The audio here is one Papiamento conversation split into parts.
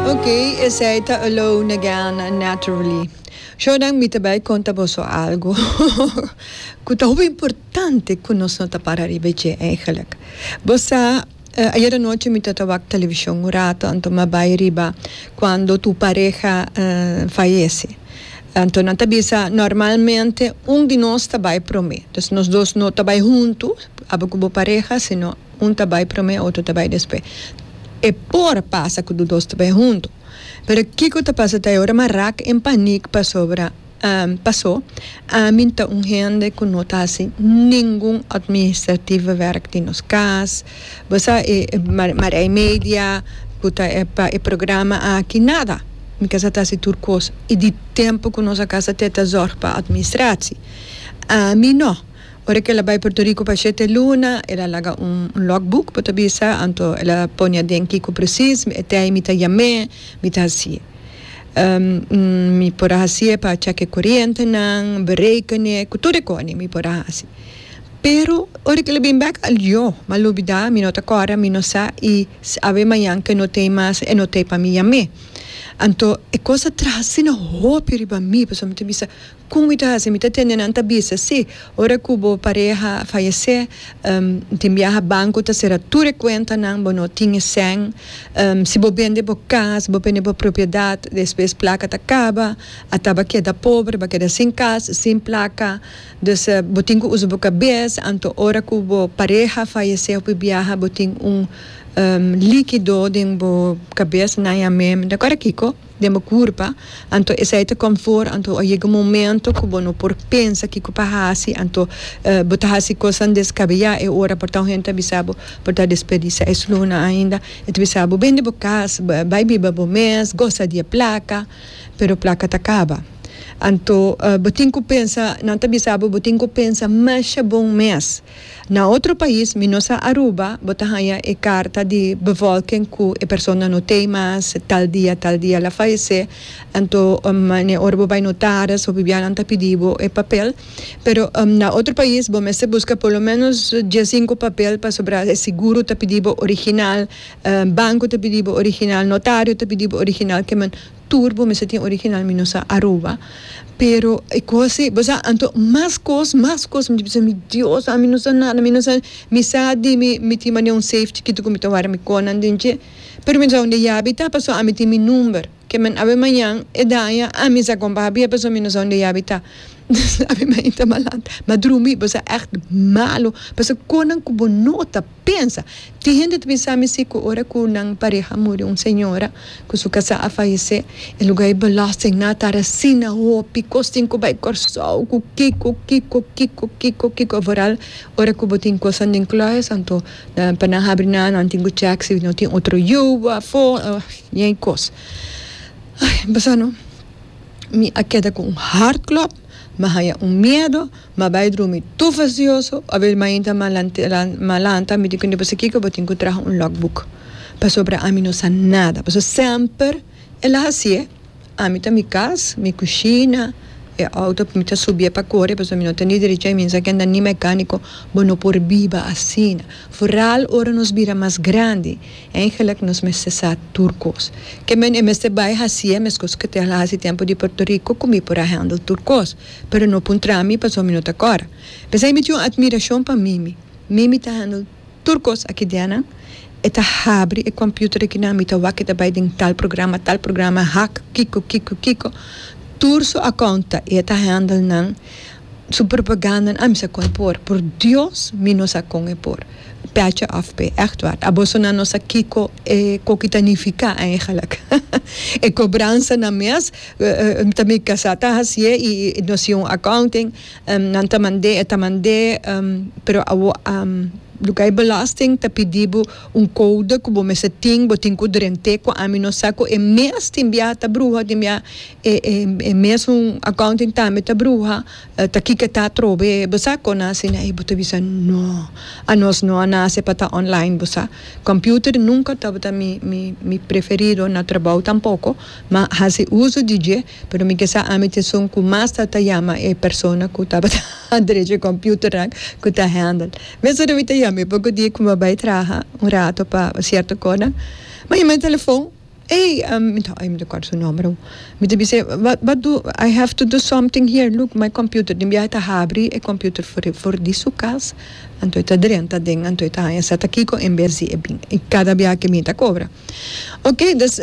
Ok, esey ta alone again naturally. Jordan mi ta bai conta boso algo cu ta hopi importante cu nos no ta para riba dje eigenlijk. Bo sa ayer anoche mi ta ta wak television un rato anto mi a bai riba cuando tu pareha fayece anto nan ta bisa normalmente un di nos ta bai prome, nos dos no ta bai hunto aba cu bo pareha sino. Un ta bai prome otro ta bai despe. E por pasa cu do dos ta bai hunto. Pero kico ta pasa ta e ora mi raak en paniek pasobra paso ami ta un hende cu no ta haci ningun administratieve werk den nos cas. Bo sa e Marij Media cu ta e pa e programa aki nada. Mi casa ta haci tur cos y di tempo cu nos a casa te ta zorg pa administratie. Ami no. Ora cu el a bay Puerto Rico pa shete luna, el a laga un logbook, bo ta bisa, anto el a pone aden kico precies mi ete mi ta yame, mi ta haci. Mi por a haci e pa cheque corientenan, berekene, cu tur e cone mi por a haci. Pero ora cu el a bin bek a lio, mi a lubida, mi no ta acorda, mi no sa y si awe mayan cu e no tey mas, e no tey pa mi yame. Anto e cos a traha asina hopi riba mi, pasobra mi ta bisa, Con mi ta haci? Mi ta tende nan ta bisa, si, ora cu bo pareha fayece, tin biaha banco ta cera tur e cuentanan, bo no tin e cen, si bo bende bo cas, si bo bende bo propiedad, despues placa ta caba, ata ba keda pobre, ba keda sin cas, sin placa, dus bo tin cu uza bo cabes, anto ora cu bo pareha fayece hopi biaha bo tin un liquido den bo cabes, nan ya me, mi ta cora kico? den bo kurpa, anto esei ta konfort, anto a yega un momento ku bo no por pensa kiko pa hasi, anto bo ta hasi kosnan deskabeá, e ora por ta un hende ta bisa bo por ta desperdisiá e sluna ainda, e ta bisa bo bende bo kas, bai biba bo mes, gosa di e plaka, pero plaka ta kaba. Anto bo tin ku pensa, nan ta bisa bo bo tin ku pensa masha bon mes, Na otro pais minos a Aruba bo ta haña e karta di bevolking ku e persona no tei mas, tal dia tal dia la fayesé, anto mane ora bo bai notaris of bibianan ta pidi bo e papel, pero na otro pais bo mester buska por lo menos dies sinku papel pasobra e seguro ta pidi bo original, banko ta pidi bo original, notario ta pidi bo original, ke men. Tur bo mester tin original mi no sa Aruba pero e cos si bo sa anto mas cos mas cos mi bisa mi Dios ami no sa nada mi no sa mi sa di mi mi tin mane un safe chikito cu mi ta wara mi conan den dje pero mi no sa unda yabi ta paso ami tin mi number ke men awe mañan e daña ami sa con baha bia paso mi no sa unda yabi ta awe mañan ta malat ma drumi bo sa echt malo paso conan cu bo no ta. Pensa, tin hende ta bin sa mester ku ora ku nan pareha muri, un señora ku su kasá a falesé, e lugá i balòs den na tara asina hopi kos tin ku bai Kòrsou ku kiko, kiko, kiko, kiko, kiko voral ora ku bo tin kosan den klùis anto pa nan habri nan nan tin ku chèk si no tin otro yu afó ña i kos. Ai, mi pasá no mi a keda ku un hart klòp, mi a haña un miedo. Ma bai drumi tur fastidioso, obe mainta ma ma lanta mi tin ku nepa sa kiko bo tin ku traha un logbook pasobra ami no sa nada pasobra semper e la hasié ami ta mi kas mi kushina e outo mi ta subié pa kore pasobra mi no ta ni derecha mi sa kenda ni mekaniko bo no por biba asina foral ora nos bira mas grandi eigenlik nos mester sa tur kos ke mi mester bai hasié e mes kos ke te la hasi tempo di Puerto Rico ku mi por a hendel tur kos. Pero no puntra mi pasobra mi no ta kòrda. P'esei mi tin un atmirashon pa Mimi. Mimi ta handel tur kos aki dianan. E ta habri e kòmpiuter akinan, mi ta wak e ta bai den tal programa, tal programa, hak, kiko, kiko, kiko. Tur su akount ta i e ta handel nan, su propaganda, a mi sa kon e por. Por Dios mi no sa kon e por. Pètje òf p'e, ègtwaar. A bosonan no sa kiko e koki ta nifiká, a e halak. E kobransanan mes Ta mi casá ta hacié y nos tin un accounting nan ta mandé e ta mandé pero lugar di belasting ta pidi bo un code cu bo mester tin bo tin cu drent'é cu ami no sa cu e mes tin biaha ta bruha tin biaha e mes un accounting tambe ta bruha ta kiko ta atrobe bo sa con a hacina y bo ta bisa no anos no a nace pa ta online bo sa computer nunca tabata mi mi mi preferido na trabao tampoco. Ma hasi uso di dje, pero mi ke sa ami t'esun ku mas ta ta yama e persona ku tabata derecho e komputernan ku ta handel. Mes ora mi ta yama e poko dia ku mi a bai traha un rato pa sierto konan, mi a yama e telefon, ey, mi ta ey mi ta kòrda su nòmber awo, mi ta bis'é wak du, i have to do something here, look my computer, den biaha e ta habri e computer for for di su kas, anto e ta drenta den, anto e ta haña sèt a kiko en bes di e bin, i kada biaha ke mi ta kobra. Oke, dus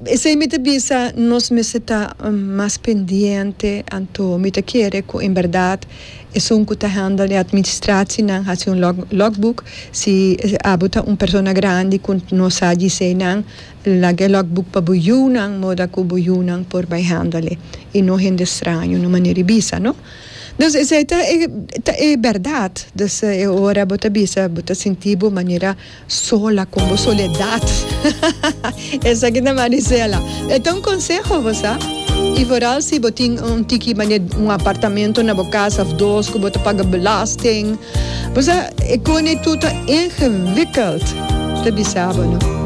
esei mi ta bisa nos mester ta mas pendiente anto mi ta kere ku en bèrdat esun ku ta hèndel e atministratienan hasi un log logboek si abo ta un persona grandi ku no sa di esei nan laga e logboek pa bo yunan moda ku bo yunan por bai hèndel e i no hende straño no manera di bisa no dus esei ta e ta e bèrdat dus e ora bo ta bisa bo ta sinti bo manera Sola con bo soledad esaki ta Marisela e ta un conseho bo sa y vooral si bo tin un tiki mane un apartamento na bo casa of dos cu bo ta paga belasting bo sa e cone tur ta ingewikkeld ta bisa bo no.